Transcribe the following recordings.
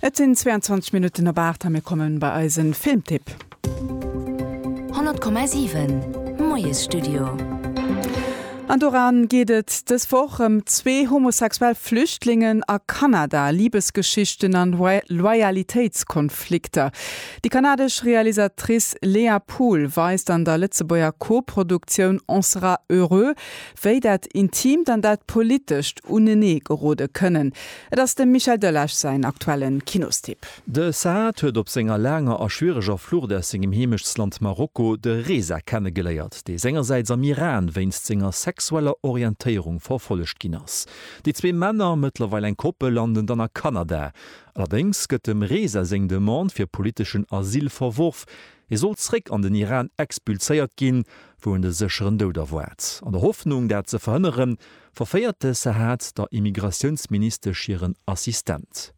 Et sinn 22 Minutten op 8 a mir kommen bei eise Filmtipp. 100,7 Moiesstudio. An doran geet et dës Woch ëm zwee homosexuell Flüchtlingen a Kanada, Libesgeschichten an Loyalitéitskonflikter. Déi kanadesch Realisatrice Léa Pool weist an der Lëtzebuerger Co-Produktioun On sera heureux wéi dat Intimt an dat Politescht unenee gerode kënnen, et ass dem Michel Delage säin aktuelle Kinostipp. De Saad huet op senger laanger a schwiereger Flucht aus sengem Heemechtsland Marokko de Reza kennegeléiert, dee sengersäits am Iran wéinst senger sexueller Orientéierung verfollegt ginn ass. Déi zwee Männer, mëttlerweil eng Koppel, landen dann a Kanada. Allerdéngs gëtt dem Reza seng Demande fir politeschen Asyl verworf, Hie sollt zréck an den Iran expulséiert ginn, wou en de sécheren Doud erwaart. An der Hoffnung, dat ze verhënneren, verféiert de Sahat der Immigratiounsministesch hiren Assistent.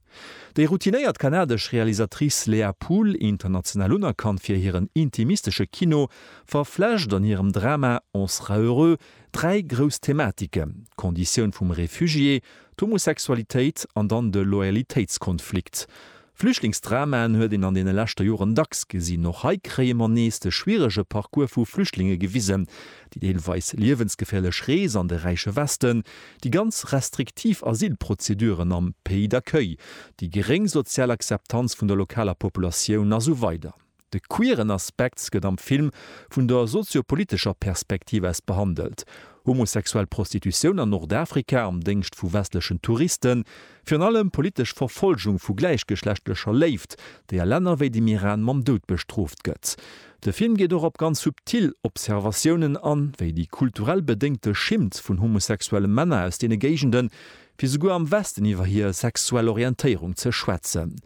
Déi routinéiert kanadesch Realisatrice Léa Poole, international unerkannt fir hiren intimistesche Kino, verflecht an hirem Drama On sera heureux dräi grouss Thematiken, d'Konditioun vum Refugié, d'Homosexualitéit an dann de Loyalitéitskonflikt. Flüchtlingsdramaen huet een an deene leschte Joren dacks gesinn. Och hei kréie mer nees de schwierege Parcours vu Flüchtlinge gewisen, déi deelweis liewensgeféierlech Rees an de räiche Westen, déi ganz restriktiv Asylprozeduren am Pays d'accueil, déi geréng sozial Akzeptanz vun der lokaler Populatioun a sou weider. De queeren Aspekt gëtt am Film vun der sozio-politescher Perspektiv aus behandelt, homosexuell Prostitutioun an Nordafrika am Déngscht vu westlechen Touristen, virun allem politesch Verfolgung vu gläichgeschlechtlecher Léift, déi a Länner wéi dem Iran mam Doud bestrooft gëtt. De Film geet och op ganz subtil Observatiounen an, wéi déi kulturell bedéngte Schimmt vun homosexuelle Männer aus deene Géigenden, fir souguer am Westen iwwer hir sexuell Orientéierung ze schwätzen.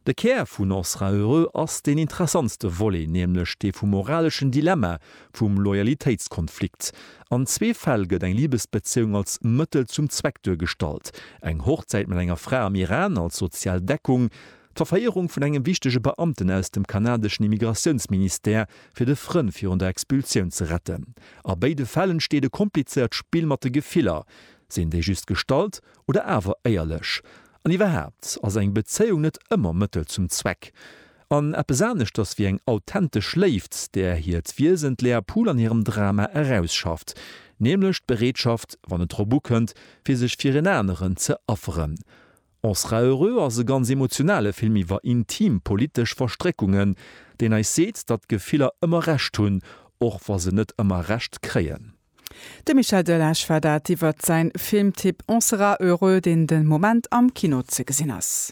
De Kär vun On sera heureux ass deen interessantste Volet, nämlech dee vum moraleschen Dilemma, vum Loyalitéitskonflikt. An zwee Fäll gëtt eng Libesbezéiung als Mëttel zum Zweck duergestallt, eng Hochzäit mat enger Fra am Iran als sozial Deckung, d'Verféierung vun engem wichtege Beamten aus dem kanadeschen Immigratiounsministère, fir de Frënn virun der Expulsioun ze retten. A béide Fäll entsteet e komplizéiert Spill mat de Gefiller. Sinn déi just gestallt Oder awer éierlech. An iwwerhaapt ass eng Bezéiung net ëmmer Mëttel zum Zweck. An eppes aneschters wéi eng authentesch Léift, där hiert Wiesen d'Léa Pool an hirem Drama erausschafft, nämlech d'Bereetschaft, wann et drop ukënnt, fir sech fir en aneren ze afferen. On sera heureux ass e ganz emotionale Film iwwer intim politesch Verstréckungen, deen eis seet, datt Gefiller ëmmer Recht hunn, och wa se net ëmmer Recht kréien. De Michel Delage war dat iwwert säin Filmtipp On sera heureux, deen de Moment am Kino ze gesinn ass.